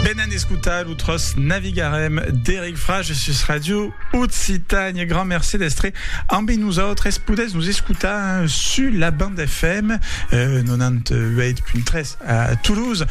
Benènt escotar lo tròç Navigarem d'Eric Frage sus Ràdio Occitània. Grand merci d'estre ambi nosautres. Podètz nos escotar sus la band FM 98.3 a Toulouse,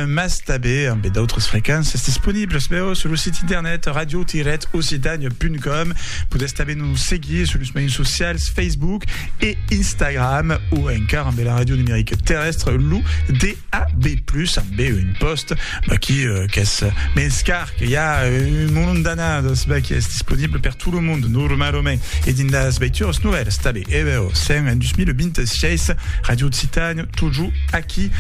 mas tanben ambe d'autres frequences disponibles vèus sus lo sit internet radio-occitània.com. Podètz tanben nos seguir sus los mejans socials Facebook e Instagram o encara ambe la ràdio numerica terrèstre, lo D. A be plus a be un post qui qu'es mens car que ya un molon d'anades be qui es disponible per tout le monde normalement e dins las veituras novèlas tabé e be o sen en 2026 radio occitane tojo aquí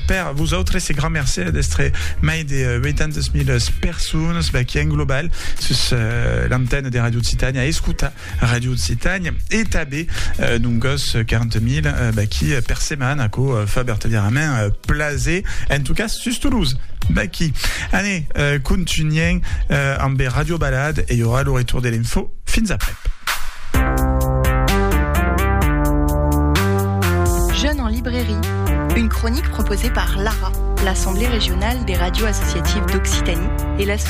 per vos autres e grand mercè d'estre mai de 800.000 personas be qui en global sus l'antenne de radio occitane a escutar Radio Occitània e tanben d'un gòs 40.000 d'aquí per setmana aquò fa vertadièrament plaser en tot cas sus Toulouse d'aquí anè contunhèm amb Radio Balade e i aurà lo retour de l'info fins après Jeune en librairie une chronique proposée par l'ARA l'Assemblée régionale des radios associatives d'Occitanie et l'association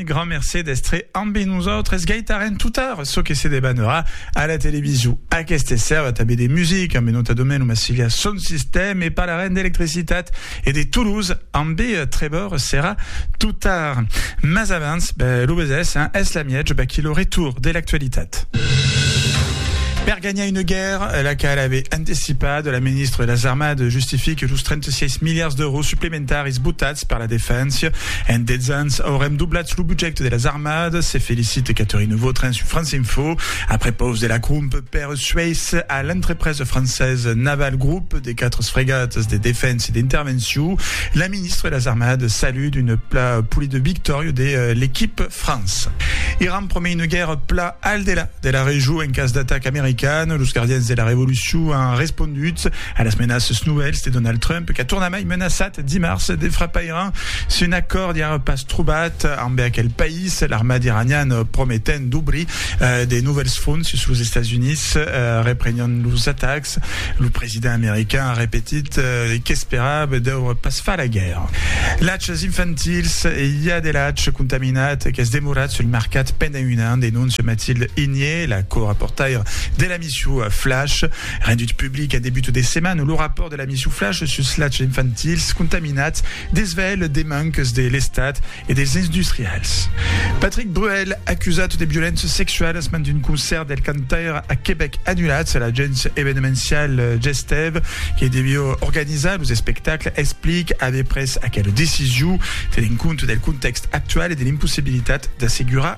Grand mercé d'estre ambe nosautres. Gaitarem totar çò que se debanera a la televiso. Aqueste sèrva tanbe de music ambe nota domen Massilia Son System e parlarem d'electricitat e de Toulouse ambe Trevor Serra totar. Mas abans, ben, lo besés, hein, es la miètge, vaquí lo retour de l'actualitat. Per ganhar una guèrra, la qual ave antecipat, la ministra de las Armades justifique los 36 miliards d'èuros supplementaris Entar es botats per la defensa. En 10 ans aurem doblat lo budget de las armadas, se felicite Catherine Vautrin sus France Info. Après paus de la crump per suèis a l'entrepresa francesa Naval Group de 4 fregatas de defensa e d'intervencion, la ministra de las armadas salut d'un pla polida victòria de l'equip France. Iran promei una guèrra pla al delà de la region en cas d'ataca americana. Los gardians de la revolucion an respondut a las menaças novèls de Donald Trump qu'a tornament Ei menaçat dimars de frapar Iran si un acòrd i a pas trobat ambe aquel país. L'armat iranian prometènt d'obrir de novèls fronts sus los Estats Units reprenián los atacs. Lo president american a repetit qu'esperava deure pas far la guèrra. Lachs infantils, i a de lach contaminat qu'es demorat sul mercat pendent un an, denóncia Mathilde Igné, la co-raportaira de l'emission Flash. Rendut public en debut de setmana, lo rapòrt de L'amisuflage sus lachs infantils contaminats desvelh de manques de l'Estat e dels industrials. Patrick Bruel acusat de violéncias sexualas mand un concèrt del cantaire a Quebec annulat se l'agéncia evenemential Gestève que deviá organizar los espectacles explic aver pres aquela decision tenent compte del contèxt actual e de l'impossibilitat d'assegurar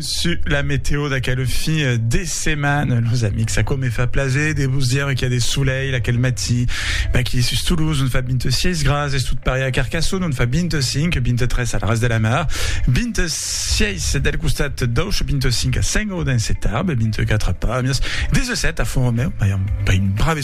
Su la meteo d'aquel fin de setmana, los amics, aquò me fa plaser de vos dire qu'i a de solelh aquel matí. Maqui sus Toulouse on fa 26 grads, es tot pareil a Carcassonne on fa 25, 23 al Ras de la Mar, 26 del costat d'Auch, 25 a Saint-Gaudens e Tarbes, 24 a Pàmies, 17 a Font-Romèu, mai un brave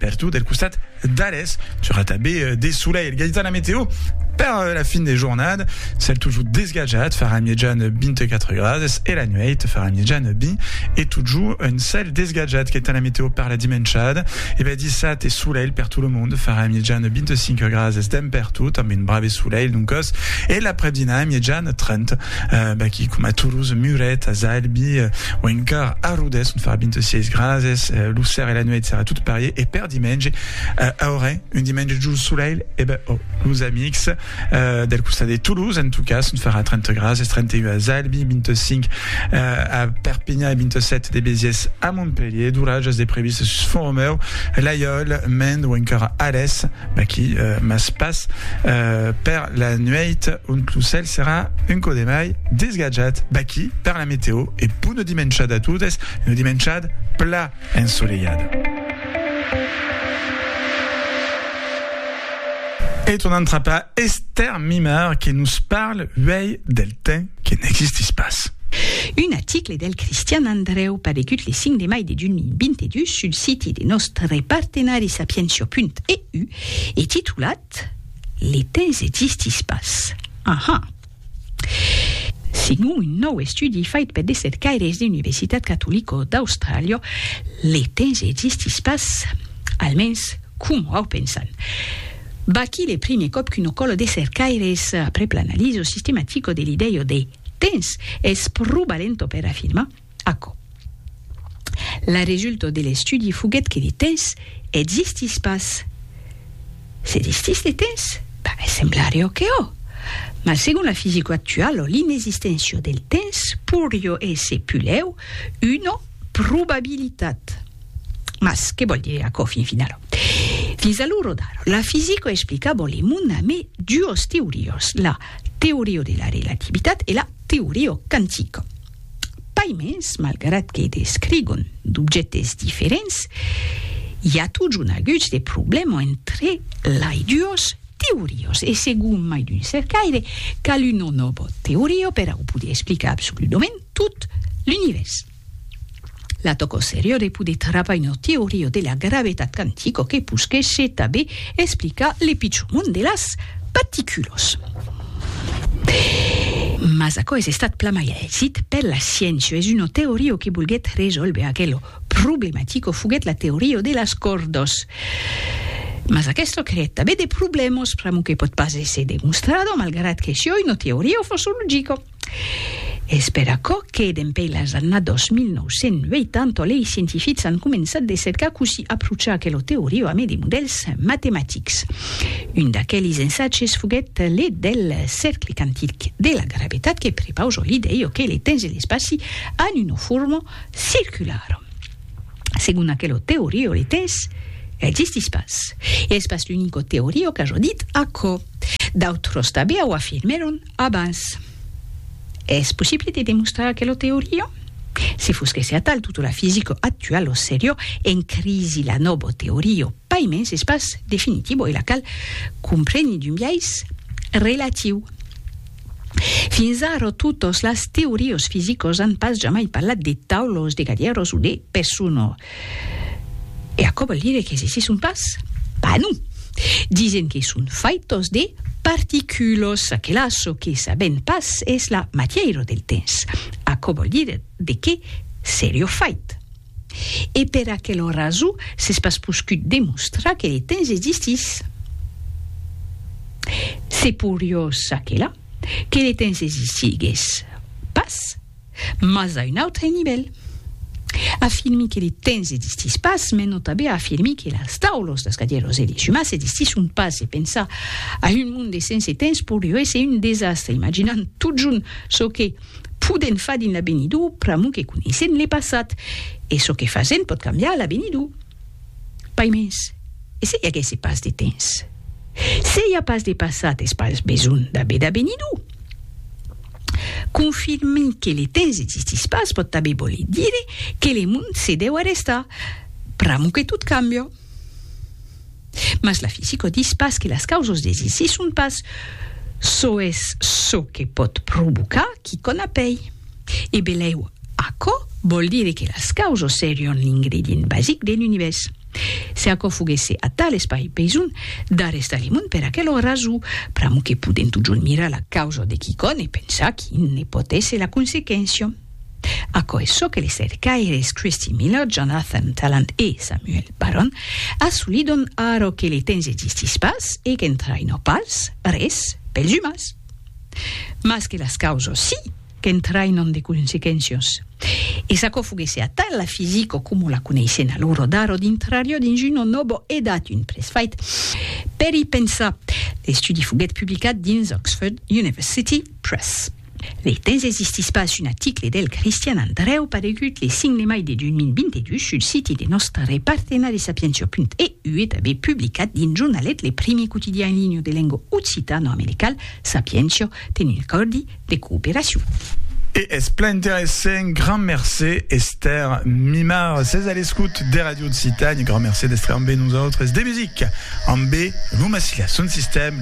Pertot del costat d'Ales, c'aurà tanben de solelh. Gaitana Meteo per la fin de jornada, cèl totjor desgatjat, farà mièjan 24 grades e la nuèit farà mièjan 20 e totjor un cèl desgatjat. Gaitana Meteo per la dimenchada, e ben dissat e solelh per tot lo monde, farà mièjan 25 grades dempertot amb un brave solelh, doncas, e l'aprèp-dinà mièjan 30. B'aquí, coma Toulouse, Muret, as Albi o encara a Rodés, ont farà 26 grads, lo ser e la nuèit serà tot parier e per dimenge aurè un dimenge jol solelh e ben oh, los amics del costat de Toulouse en tot cas, ont farà 30 grads, 31 as Albi, 25 a Perpignan e 27 de Béziers a Montpellier, d'oratges de previstes sus Font-Romeu, Laiòl, Mende o encara Alès. Aquí, mas pas per la nuèit, ont lo cèl serà un cò de mai desgatjat. Baquí, per la meteo, e bona dimenchada a totes, una dimenchada pla ensolelhada. E tornam trapar Esther Mimard que nos parle uèi del temps que n'existís pas. Un aticle e del Cristian Andrèu paregut le 5 de mai de 2022 sul siti de nòstre partenari sapientia.eu e titulat Le temps existís pas. Aha! Segon un nòu estudi fait per de cercaires de Universitat Catolico d'Austràlia, le temps existís pas, almens coma au pensan. Vaquí le primier còp qu'una còla de cercaires aprèp l'analiso sistematico de l'idèia de. Tens, es pro balento per afirmar aquò. La resulta de l'estudi foguèt que de tens existís pas. S'existís de tens? Ben, semblarió que ò. Mas segon la fisica actuala l'inexisténcia del tens pourrió èsser pulèu una probabilitat. Mas que vòl dire aquò fin final? Fins a lo rodar, la fisica explicava le mond amé duos teorias, la teoria de la relativitat e la teoria quantica. Pas mens, malgrat que descrigon d'objèctes diferents, i a totjorn aguts de problèma entre lai duos Teoriós, e segon mai d'un cercaire, cal un o novo teorió per au poder explicar absoludament tot l'Univèrs. La tòco serior e poder travar un o teorió de la gravetat quantico que posquèshe tabé explicar le pichor mond de las particulos. Mas aquò es estat plan mai a exit per la sciéncia, es un o teorió que volguèt resòlver aquel o Problematico foguèt la teoria de las còrdas. Mas aquesto creèt tanben de problèmas, pr'amor que pòt pas èsser demostrado, malgrat que sioi una teoria o fòrça logica. Es per aquò que, dempèi las annadas 1980, lei scientifics an començat de cercar cossí aprochar aquela teoria amé de modèls matematics. Un d'aquelis ensatges foguèt le del cercle quantic de la gravetat que prepausa l'idèia que le temps e l'espaci an una forma circular. Segon aquelo teorio le tès existís pas, e es pas l'unico teorio qu'a jo dit aquò, d'autros tanben o afirmèron abans. Es possible de demostrar aquelo teorio? Se fos que se atal tota la fisica actual o serió en crisi la nobo teorio pas mens es pas definitivo e la cal compreni d'un biais relatiu. Fins ara totes las teorias fisicas an pas jamai parlat de taulas, de gadièras o de pessona. E aquò vòl dire que se son pas? Pas non! Disen que son faitas de particulas, aquela çò que sabèm pas es la matièira del temps. Aquò vòl dire de qué seriá fait? E per aquela rason s'es pas poscut demostrar que le temps existís. Se poriós aquela, que le temps existigués pas, mas a un autre nivèl. Afirmi que le temps existís pas me nò tanben a afirmir que las taulos, las cadièros e les sumas existisson pas e pensar a un monde sense temps porió èsser un desastre, imaginant totjorn çò que, Podèn far dins l'avenidor pr'amor que coneissèn le passat, e çò que fasèn pòt cambiar a l'avenidor. Pas mens, e se i aguèsse pas de temps? Se i a pas de passat es pas besonh d'aver d'avenidor. Confirmir que le temps existís pas pòt tanben voler dire que le mond se dèu arrestar, pr'amor que tot cambia. Mas la fisico dis pas que las causos de Zissi son pas çò es çò que pòt provocar quicòm a pei. E belèu aquò vòl dire que las causos serion l'ingredient basic d'un univèrs. Se aquò foguèsse atal es pas besonh d'arrestar le mond per aquela rason, pr'amor que podèm totjorn mirar la causa de quicòm e pensar quin ne pòt èsser la consequéncia. Aquò es çò que li cercaires Christy Miller, Jonathan Tallant e Samuel Barron assolidon ara que le temps existís pas e qu'entraina pas res pels umans. Mas que las causas si qu'entrainan de consequéncias. E s'aquò foguèsse atal, la fisica coma la coneissèn a l'ora d'ara dintrariá dins una nòva edat, un presfait per i pensar. L'estudi foguèt publicat dins Oxford University Press. Le temps existís pas un aticle del Cristian Andrèu paregut le 5 de mai de 2022 sul siti de nòstre partenari sapientia.eu e tanben publicat dins Jornalet, le primier quotidian en linha de lenga occitano-americal, Sapientia ten un acòrdi de cooperacion. E es plan interessent, grand mercé Esther Mimard. Ses a l'escout de Radio Occitània, grand mercé d'estre ambe nosautres. De musica ambe Luma Silla, son sistèm.